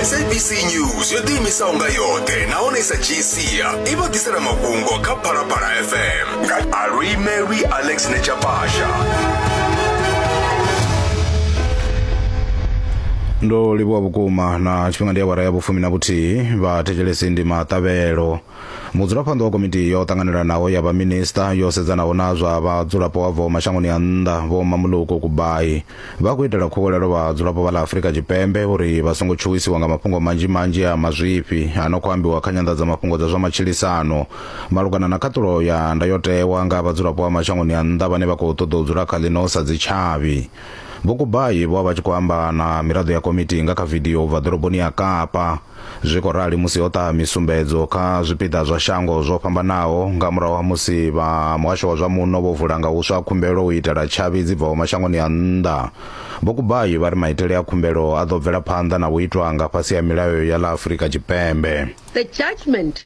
sabc news yo ḓiimisaho nga yoṱhe nahone sa gsia i vha ḓisela mafhungo kha phalaphala fm nga alwi mary alex nechapasha ndo livhuwa vhukuma na tshifhinga ndi awara ya vhufumi na vhuthihi vhathetshelesi ndi maṱavhelo mudzulaphanḓa wa komiti yo ṱanganelanaho ya vhaminista yo sedzanaho na zwa vhadzulapo wa bvaho mashangoni a nnḓa vho mamuluko kubai Vha khou itela khuwelelo vhadzulapo vha ḽa Afrika Tshipembe uri vha songo tshuwisiwa nga mafhungo manzhi-manzhi a mazwifhi a no khou ambiwa kha nyanḓadzamafhungo dza zwa matshilisano malugana na khaṱulo ya ndayotewa nga vhadzulapo vha mashangoni a nnḓa vhane vha khou ṱoḓa u dzula kha ḽino sa dzitshavhi. Vho Kubayi vho vha vha tshi khou amba na miraḓo ya komiti nga kha vidio u bva ḓoroboni ya Kapa. Zwi khou rali musi ho ṱaha misumbedzo kha zwipiḓa zwa shango zwo fhambanaho nga murahu ha musi vha muhasho wa zwa muno vho vula nga huswa khumbelo u itela tshavhi dzi bvaho mashangoni a nnḓa. Vho Kubayi vha ri maitele a khumbelo a ḓo bvela phanḓa na u itwa nga fhasi ha milayo ya ḽa Afurika Tshipembe. The judgement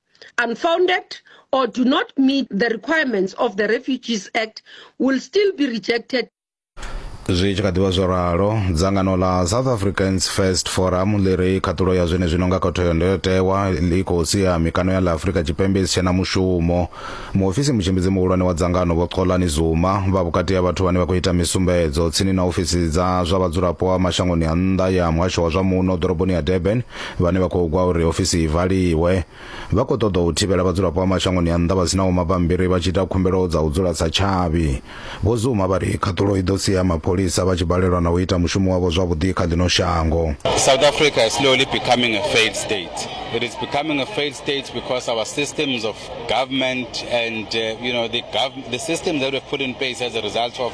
unfounded or do not meet the requirements of the Refugees Act will still be rejected zwi tshi kha ḓivha zwo ralo dzangano ḽa south africans first forum ḽi ri khaṱulo ya zwene zwino nga khotho ya ndayotewa ḽi khou sia mikano ya ḽa afurika tshipembe i si tshena mushumo muofisi mutshimbidzi muhulwane wa dzangano vho xolani zuma vha vhukati ha vhathu vhane vha khou ita misumbedzo tsini na ofisi dza zwa vhadzulapo wa mashangoni a nnḓa ya muhasho wa zwa muno ḓoroboni ya durban vhane vha khou gwa uri ofisi i valiwe vha khou ṱoḓa u thivhela vhadzulapo vha mashangoni a nnḓa vha sinaho mabambiri vha tshi ita khumbelo dza u dzula sa tshavhi vho zuma vha ri khaṱulo i ḓo sia mapholisa vha tshi balelwa na u ita mushumo wavho zwavhuḓi kha ḽino shango South Africa is slowly becoming a failed state it is becoming a failed state because our systems of government and uh, you know the, gov the systems that we've put in place as a result of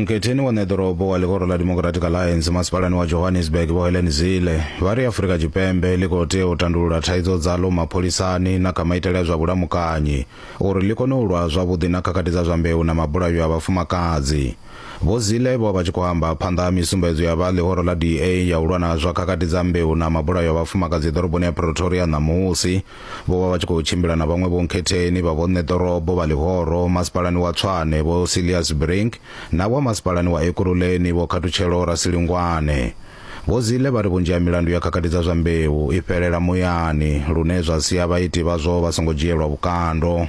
mgetheni wa neḓorobo wa ḽikoro ḽa democratic alliance masipalani wa johannesburg vho helen zile vha ri afurika tshipembe ḽi khou tea u tandulula thaidzo dzaḽo mapholisani na kha maitele a zwa vhulamukanyi uri ḽi kone u lwa zwavhuḓi na khakhathi dza zwa mbeu na mabulayo a vhafumakadzi Vho Zille vho vha tshi khou amba phanḓa ha misumbedzo ya vha ḽihoro ḽa DA ya u lwa na zwa khakhathi dza mbeu na mabulayo a vhafumakadzi ḓoroboni ya Pretoria ṋamusi. Vho vha vha tshi khou tshimbila na vhaṅwe vhonkhetheni vha vhonṋe ḓorobo vha ḽihoro masipalani wa Tshwane Vho Cillias Brink na vha masipalani wa Ekurhuleni Vho Khathutshelo Rasilingwane. Vho Zille vha ri vhunzhi ha milandu ya khakhathi dza zwa mbeu i fhelela muyani lune zwa sia vhaiti vhazwo vha songo dzhielwa vhukando.